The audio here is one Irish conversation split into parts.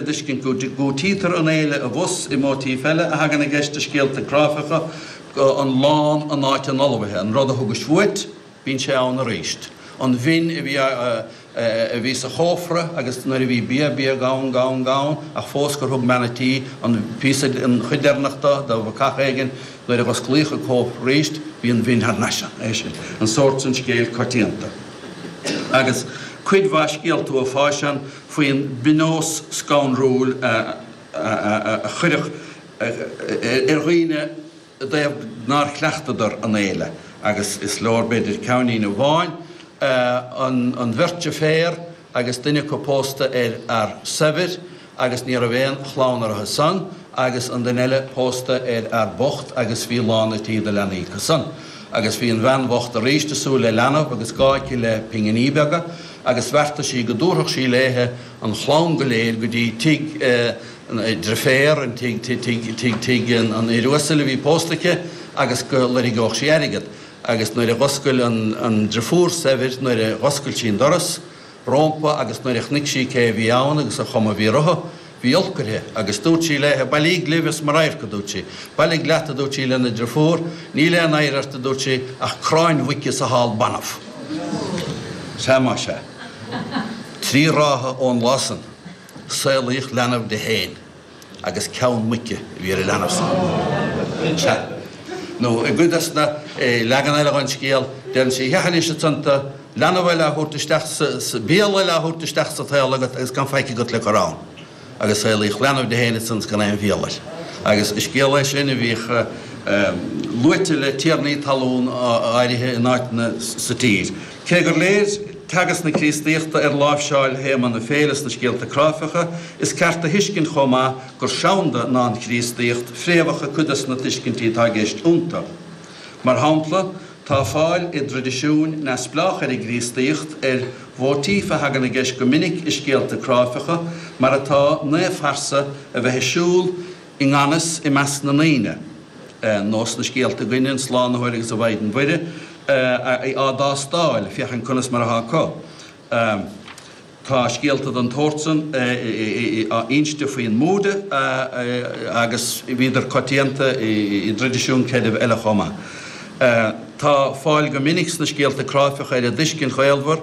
a dtuiscint go gcúitítear an fhéile abhus i móitíf eile a thagann i gceist i scéalta cráifeacha, an lán in áit an fholmhaithe, an rud a thugais uait, bíonn sé ann arís, an mhin a bhí sa chófra agus nuair a bhí bia, bia gann, gann, ach fós gur thug bean an tí an píosa, an chuid deireanach de, do bhacach éigin, nuair a dh'osclaíodh an cófra arís, bhí an mhin thar n-ais ann. É sin, an sórt san scéal coitianta. Agus cuid mhaith scéalta uafáis. faoin bpionós scanrúil a cuireadh ar dhaoine i dtaobh nár chleachtadar an fhéile, agus is leor, b'fhéidir, ceannlíne amháin, An bheirt fhear agus duine acu pósta ar fhear saibhir agus ní raibh aon chlann orthu san, agus an duine eile pósta ar fhear bocht agus bhí lán a' tí de leanaí acu san. Agus bhí an bhean bhocht arís ag súil le leanbh agus gá aici le pinginí beaga, agus bheartaigh sí go dtabharfadh sí léithe an chlann go léir go dtí tigh an driféar, tigh an fhir uasail a bhí pósta aici, agus go loirgeódh sí airgead. Agus nuair a dh'oscail an drifiúr saibhir, nuair a dh'oscail sí an doras, rompu agus nuair a chnuic sí cé a bhí ann agus an chuma a bhí orthu, bhí olc uirthi agus dúirt sí léithe, Bailigh libh as mo radharc a, dúirt sí, bailigh leat, a dúirt sí lena drifiúr, níl aon oidhre ort, a dúirt sí, ach cráin mhuice is a hál banbh. Sea, más ea. Trí ráithe ón lá san, saolaíodh leanbh di féin. agus ceann muice a bhí ar an leanbh san. Sea, nó i gcuid de na leaganacha den scéal, déanann sí a hachasán léithe i dtaobh is, leanbh eile á thabhairt isteach sa, béal eile á thabhairt isteach sa tsaol agat agus gan faic agat le cur ann, agus saolaíodh leanbh di fhéin ansan is gan aon bhéal air. Agus is scéal é sin a bhíodh luaite le tiarnaí talún áirithe in áiteanna sa tír. Cé gur léir teagasc na Críostaíochta ar láimhseáil théama na féile sna scéalta cráifeacha, is ceart a thuiscint chomh maith gur seanda ná an Chríostaíocht fréamhacha cuid de na tuiscintí atá i gceist iontu. Mar shampla, tá fáil i dtraidisiúin neamhspleách ar an gCríostaíocht ar mhóitíf a thagann i gceist go minic i scéalta cráifeacha, mar atá, naomhphearsa a bheith ag siúl i i ngan fhios i measc na ndaoine, nó sna scéalta againn an Slánaitheoir agus an Mhaighdean Mhuire á dtástáil féachaint conas mar atá acu. Tá scéalta den tsórt san inste faoin mBúda agus bhíodar coitianta i dtraidisiúin creidimh eile chomh maith. Tá fáil go minic sna scéalta cráifeacha ar an dtuiscint ghaolmhar,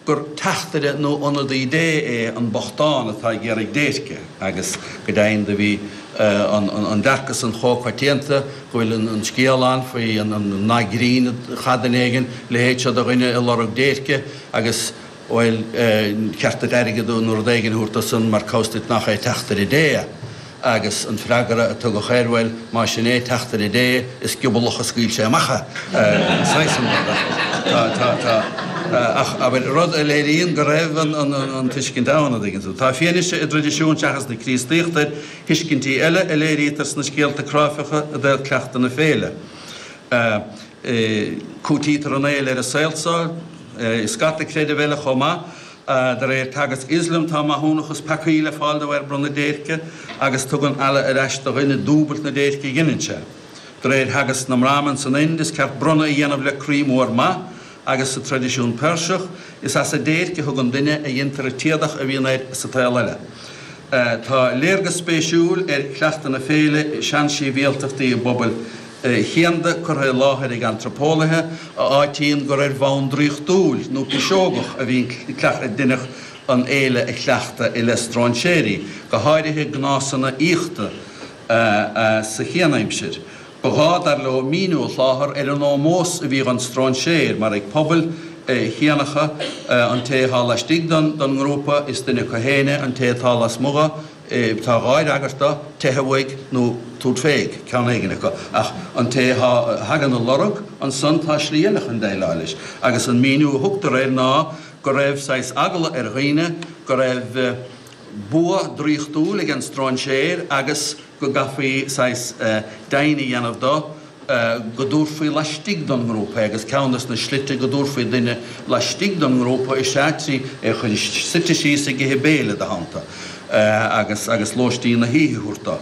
gur teachtaire nó ionadaí Dé é an bochtán atá ag iarraidh déirce, agus go deimhin do bhí an dearcadh san chomh coitianta go bhfuil an scéal ann faoi nath grinn a chaith duine éigin leithéid seo de dhuine ag lorg déirce agus bhuel, cheart duit airgead nó rud éigin a thabhairt dó san mar cá bhfios duit nach é teachtaire Dé é. agus an freagra a tugadh air, bhuel, más sin é, teachtaire Dé, ach is giobalach a scaoil sé amach é, an saghas sin rud. Tá, tá, tá. Ach, abair, rud a léiríonn go raibh an tuiscint ann, a dtuigeann tú. Tá fianaise i dtraidisiúin seachas na Críostaíochta ar thuiscintí eile a léirítear sna scéalta cráifeacha i dtaobh cleachtadh na féile. Cúitítear an fhéile ar an saol so i scata creideamh eile chomh maith. De réir teagasc Ioslam, tá maithiúnachas peacaí le fáil de bharr bronnadh déirce, agus tugann Allah ar ais do dhuine dúbailt na déirce a dheineann sé. De réir theagasc na mBrahmin san Ind, is ceart bronnadh a dhéanamh le croí mór maith, agus sa traidisiún Peirseach, is as an déirc a thugann duine a dhéantar an t-éadach a bhíonn air sa tsaol eile. Tá léargas spéisiúil ar chleachtadh na féile i seansibhialtachtaí i bpobail chianda curtha i láthair ag antraipeolaithe a áitíonn gur ar bhonn draíochtúil nó piseogach a bhíonn daoine an fhéile a chleachtadh i leith stróinséirí, go háirithe gnásanna aíochta sa chianaimsir. Ba ghá, dar leo, míniú a sholáthar ar an ómós a bhíodh don stróinséir, mar ag pobail chianacha, an té atá laistigh den ngrúpa, is duine acu féin an té atá lasmuigh, tá dhá fhreagairt air, teitheadh uaidh, nó tabhairt fé ag ceann éigin acu, ach an té a thagann á lorg, ansan tá slí eile chun déileáil leis, agus an míniú a thugtar air ná go raibh saghas eagla ar dhaoine go raibh bua draíochtúil ag an stróinséir agus, go gcaithfí saghas deimhin a dhéanamh de go dtabharfaí laistigh den ngrúpa é, agus ceann de na slite go dtabharfaí duine laistigh den ngrúpa is ea trí é a chur suite síos ag ithe béile id theannta agus lóistín na hoíche a thabhairt dó.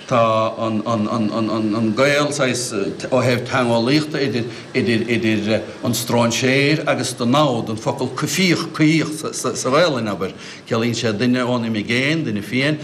Tá an gaol, saghas, ó thaobh teangeolaíochta idir an stróinséir agus an namhaid, an focal coimhthíoch, coimhthíoch sa Ghaelainn, abair, ciallaíonn sé duine ón imigéin, duine fiáin,